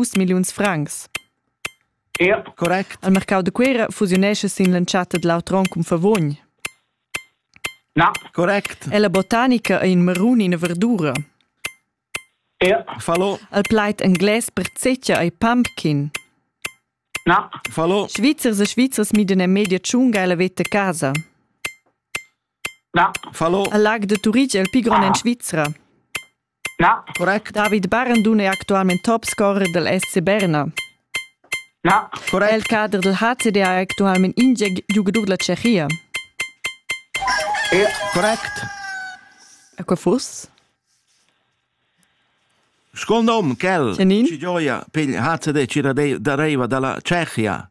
dus milliuns francs. Correct. Al mercau da Cuera fusiunescha sin l'entschatta da l'auter onn cun Favogn. Na. Correct. E la botanica ei in marun ina verdura. Ja. Fallo. Al plait englais per zecca ei pumpkin. Na. Fallo. Svizzers e Svizzers midan e media tschunga e la veta casa. Na. Fallo. Al lag de Turitg è il più grande in Svizzera. David Barandun è actualmain topscorer dal SC Berna. Era il cader dal HCD è actualmain ingieg giugadur da Tschechia. Correct. E qua fuss? Scuol nom, quel, Janin? ci gioia, pigl HCD ci dareva dalla Tschechia.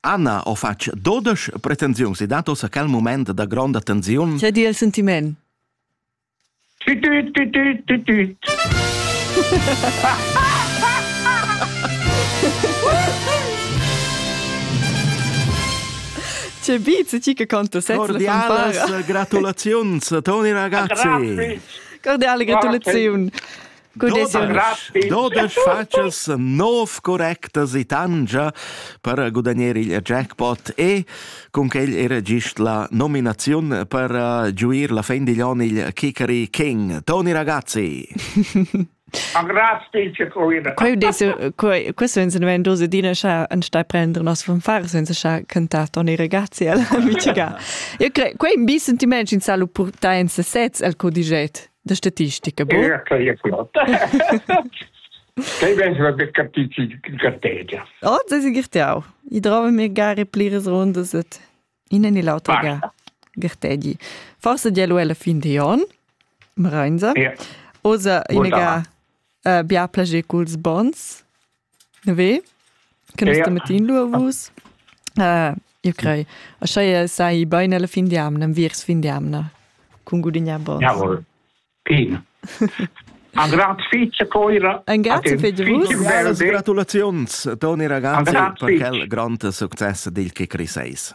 Anna ho fatg dodesch pretensiuns e dat ussa quel mument da gronda tensiun. Tge di il sentiment? Tüt, tüt, tüt, tüt, tüt, tüt. Tge beat ti che canto sezs? Cordialas gratulaziuns, Toni ragazzi. Cordiale gratulaziun. Dodesch fatschas nov correctas e tangia per gudagnare il jackpot e con quel era gist la nominazione per eh, giuir la fin digl on il Kikari King. Toni ragazzi. Questo insinuando dose dina cha an stai prender nos von far senza cha cantar Toni ragazzi alla mitiga. Io crei quei un bi sentiment in salu purta en sesez al codiget. da statistica bo Quei ben va per capiti gartegia. Oh, das ist gertau. Ich trove mir gare pliras rundas et in en l'auto ga gertegi. Forse dia lu alla fin di on, Marenza. Ja. Osa in ga bia plager culs bons. Neve che nus metin lu vus. Io crei. A scheia sai bain alla fin di amna, viers fin di amna, cun gudignar bons. Jawohl. Pin. Ein grazie fitg coira. Ein grazie fitg vus. Gratulaziuns Toni ragazzi per quel grande successo dil che Chris eis.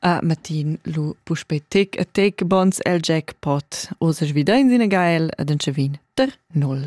A matin lu puspei tic e tic bons el jackpot. Oz svidein sin a gael ed en vin der null.